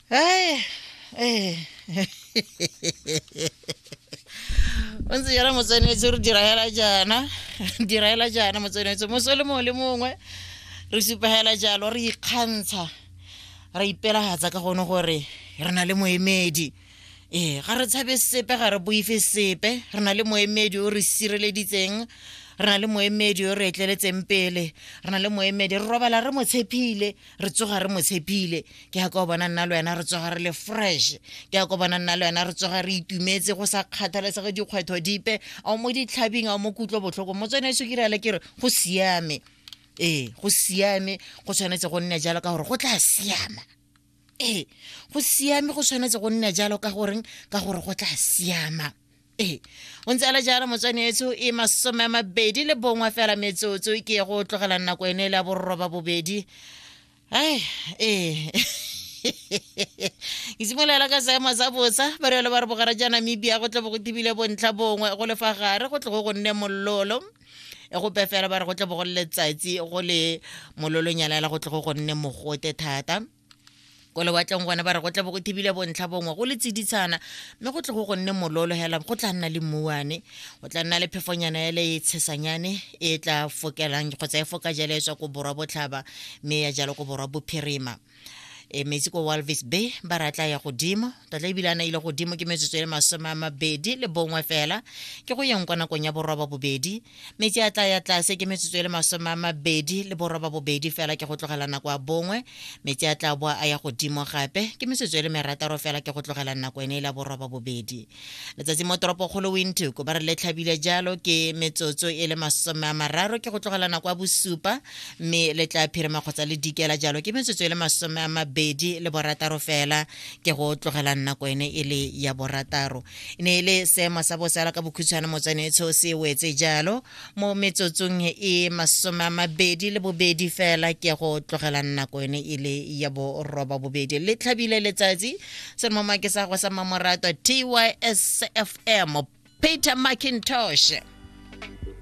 Ay, eh. o ntse jana motsenetse re dira hela jaana dira hela jaana motsenetse moso le mongwe le mongwe re supagela jalo re ikgantsha ra ipelagatsa ka gone gore re na le moemedi ee ga re tshabe sepe ga re boife sepe re na le moemedi o re sireleditseng re na le moemedi o re etleletseng pele re na le moemedi re robala re mo tshepile re tsoga re mo tshepile ke ya ko bona nna le wena re tsoga re le fresh ke ya ko bona nna le wena re tsoga re itumetse go sa kgathalesege dikgwetlho dipe a mo ditlhabing a mo kutlo botlhoko mo tsone se kirale ke re go siame ee go siame go tshwanetse go nne jalo ka gore go tla siama ee go siame go tshwanetse go nne jalo ka goreng ka gore go tla siama ee o ntse a le jalo motswanetso e masome a mabedi le bongwe fela metsotso ke ye go tlogela nako ene e le ya borroba bobedi ai ee ke simolola ka seemo sa bosa ba rialo ba re bogara ja namibia go tle bo go tibile bontlha bongwe go lefa gare go tle go go nne mollolo e go pefela ba re go tle bo go le letsatsi go le mololonyana ela go tle go go nne mogote thata ko lewatleng gona ba re go tle bo go thibile bontlha bongwe go le tsiditshana mme go tle go gonne mololo hela go tla nna le mmuane go tla nna le phefonyana ya le tshesanyane e tla fokelang kgotsa e foka jalo e tswa ko borwa botlhaba mme ya jalo ko borwa bophirima e metsi ko walvis bay ba re a tla ya godimo tlatla ebile a na ile godimo ke metsotso e le masome a mabedi le bongwe fela ke go yeng kwa nakong ya borwa ba bobedi metsi a tla ya tlase ke metsotso e le masome a mabedi le boroba bobedi fela ke go tlogela nako a bongwe metsi a tla boa a ya godimo gape ke metsotso e le merataro fela ke go tlogela nako ene e la boroba bobedi letsatsi mo toropokgolo winthuko ba re le tlhabile jalo ke metsotso e le masome a mararo ke go tlogela nako a bosupa mme le tla phirima kgotsa le dikela jalo ke metsotso e le masome a mabedi le borataro fela ke go tlogela nako ene e le ya borataro e ne e le seemo sa bosala ka bokhutshwane motswanetsho se wetse jalo mo metsotsong e masome a mabedi le bobedi fela ke go tlogela nako ene e le ya boroba bobedi le tlhabile letsatsi se mo make sa go sa mamoratwa tysfm peter macintosh